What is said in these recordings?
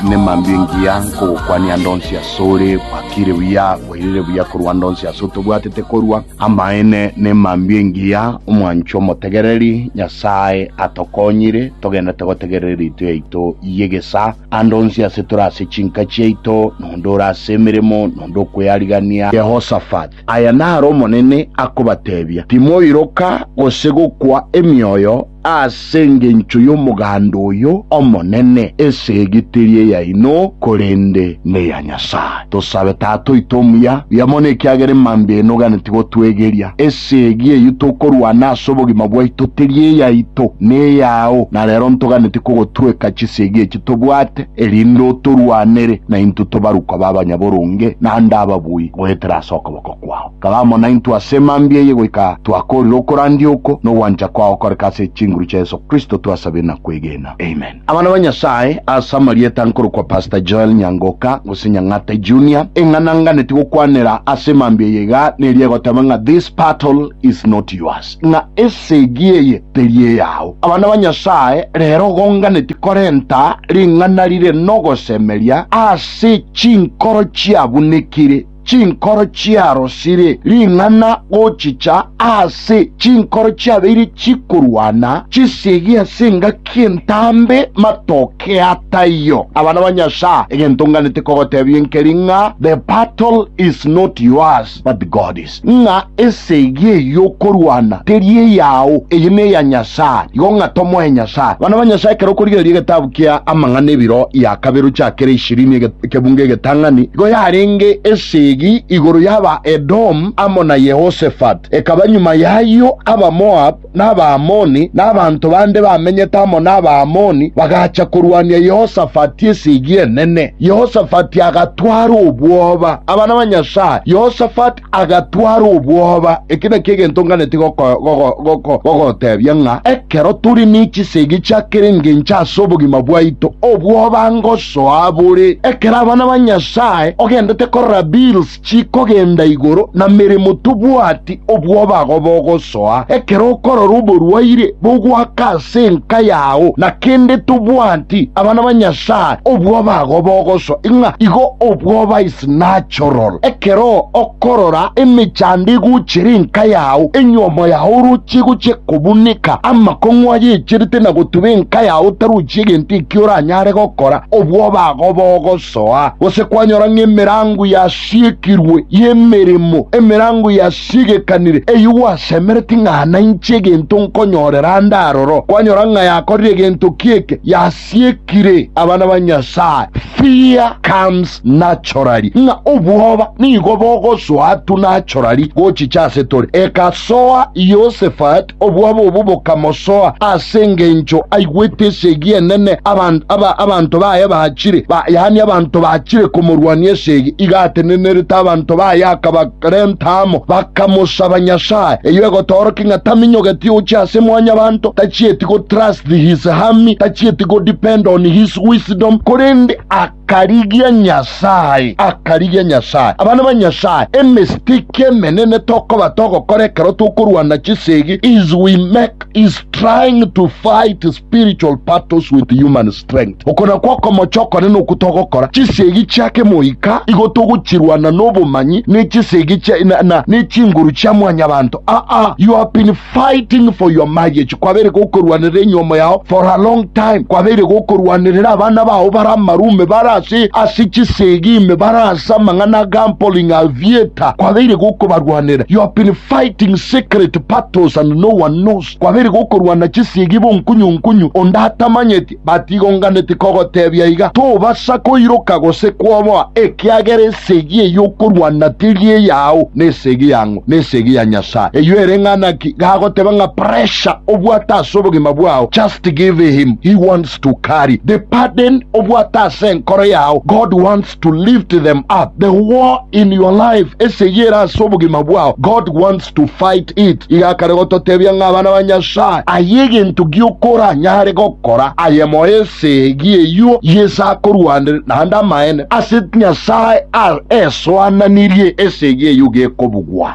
Nemambia engiya nkogokwania ande onsi asore, gwakire buya, gwairire buya korwa ande onsi ase otobwatete korwa. Amaene, nemambia engiya, omwanchwa omotegereri, Nyasae atokonyire, togenderete gotegerera eritwe yaito y'egesaa. Ande onsi ase tore ase chinka chiaito, nonde ore ase emeremo, nonde okwearigania. Yehosafat, Aya naro Omonene akobatebia, Timoiroka, gose gokwa emioyo, Ase engencho y'omoganda oyo omonene, esegi teri eyaino, korende neya Nyasae. Tosabe Tata oito omuya, buya mono ekiagera emambia eye noganetie gotwegeria. Esegi eyio tokorwana ase obogima bwaito teri eyaito, neyao, na rero ntoganetie kogotweka chisegi echi tobwate, erinde otorwanere, na intwe tobarukwa b'abanyaboronge, naende ababui, goetera ase okoboko kwao. Kare amo naintwe ase mambia eye goika twakoorire okorandia oko nogwancha kwao gokoreka ase chinguru chia Yeso Kristo twasabire na kwegena. Amen. Abana ba Nyasaye, ase amarieta nkorokwa Pastor Joel Nyangoka gose Nyang'ata Junior, eng'ana nganeti gokwanera ase mambia eye iga neri egoteba ng'a This battle is not yours, ng'a esegi eye teri eyao. Abana ba Nyasaye, rero igo nganeti korenta ring'ana rire nogosemeria ase chinkoro chiabunekire. Chinkoro chiarosire ring'ana gochicha aase, chinkoro chiabeire chikorwana chisiegi ase engaki entambe matoke a taiyo. Abana ba Nyasae, egento nganete kogotebia nkeri ng'a the battle is not yours but God's, ng'a esegi eyio okorwana teri eyao, eye neya Nyasae, igo ng'a tomoe Nyasae. Abana ba Nyasae, ekero okorigereria egetabu kia Amang'ana ebiro ya kabere ochiakere ishirini, ekebungo egetang'ani, nigo yarenge esegi igoro y'aba Edomu amo na Yehosafati. Ekaba nyuma y'ayio Abamoabu na Abaamoni, na abanto bande bamenyete amo n'Abaamoni, bagacha korwania Yehosafati esegi enene. Yehosafati agatwara obwoba. Abana ba Nyasae, Yehosafati. agatwara obwoba. Eki nakio egento nganeti gogotebia ng'a ekero tore ne chisegi chia kera engencho ase obogima bwaito, obwoba ngosoa bore. Ekero abana ba Nyasae ogendete korora bills chikogenda igoro na meremo tobwati, obwoba agwo bogosoa. Ekero okorora oborwaire bogoaka ase enka yao na kende tobwati, abana ba Nyasae obwoba agwo bogosoa. Ing'a igo obwoba ase. just natural. Ekero okorora emechandegu chiri nka yao, enyomo yao orochie gochia kobuneka, amakong'u ayecherete na gotuba enka yao otarochi egento ekio oranyare gokora, obwoba ago bogosoa. Gose kwanyora ng'a emerango yasiekirwe y'emeremo, emerango yasiegekanire, eyio gwasemereti ng'a nainche egento nkonyorera ande aroro, kwanyora ng'a yakorire egento ki'eke, yas. siekire abana ba Nyasae, fear comes naturally, ng'a obwoba nigo bogosoa tu naturally gochicha ase tore. Egasoa Yehosafat, obwoba obwo bokamosoa ase engencho aigwete esegi enene abanto abanto baye bachire, yaani abanto bachire komorwania esegi iga atenenerete abanto baye akaba. Korende amo bakamosaba Nyasae, eyio egotoorokia ng'a taminyogeti ogochia ase mwanyabanto, tachieti go trust his hami, tachieti go depend on his wisdom, korende akarigia Nyasae, akarigia Nyasae. Abana ba Nyasae, emistake emenene tokoba togokora ekero tokorwana chisegi is we make is trying to fight spiritual battles with human strength. Okona kw'okomocha okone nokwo togokora chisio egi chia kemoika, igo togochirwana n'obomanyi ne chisio egi chia na, na ne chinguru chia mwanyabanto. Aa, you have been fighting for your marriage, kwabeire gokorwanerera enyomo yao for a long time, kwabeire gokorwanerera abana bao bare amaru ime bare ase ase chisio egi ime bare ase amang'ana a gambling, a theatre, kwabeire gokobarwanera. You have been fighting secret battles and no one knows. Kwabere gokorwana chisiegi bonkunyunkunyu, onde atamanyeti, batigonganeti kogotebia iga, Tobasa koiroka gose kwoboa, ekiagera esegi eye okorwana teri eyao, nesegi yang'o? Nesegi ya Nyasaye. Eyio ere ng'ana ki? Gagoteba ng'a pressure obwate ase obogima bwao, just give him, he wants to carry the burden obwate ase enkoro yao, God wants to lift them up. The war in your life, esegi ere ase obogima bwao, God wants to fight it. Iga akare gototebia ng'a abana ba Nyasae, aye egento gi'okora nyare gokora, aye moyo esegi eyio y'ese akorwanire, naende amaene ase Nyasae a esoananirie esegi eyio gekobugwa.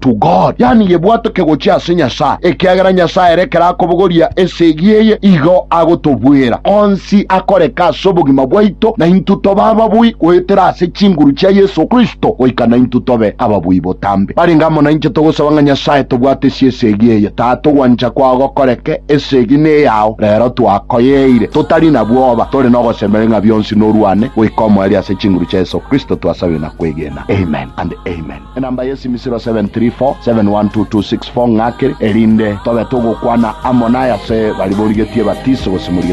to God, yaani yebwatoke gochia ase Nyasae, ekiagera Nyasae ere ekero akobogoria esegi eye igo agotobwera onsi akoreka ase obogima bwaito na intwe tobe ababui goetera ase chinguru chia Yeso Kristo goika naintwe tobe ababui botambe. Barenge amo nainche togosaba ng'a Nyasae tobwatesie esegi eye. Tata, ogwancha kwao gokoreke, esegi neyao, rero twakoyeire, totari na bwoba, tore nogosemeri ng'a bionsi norwane goika omoerio ase chinguru chia Yeso Kristo twasabire na kwegena. Amen and Amen. Enamba y'esimisiro 734712264 ng'ake, erinde tobe togokwana amo nayase baria borigetie ebatiso gose morigetie.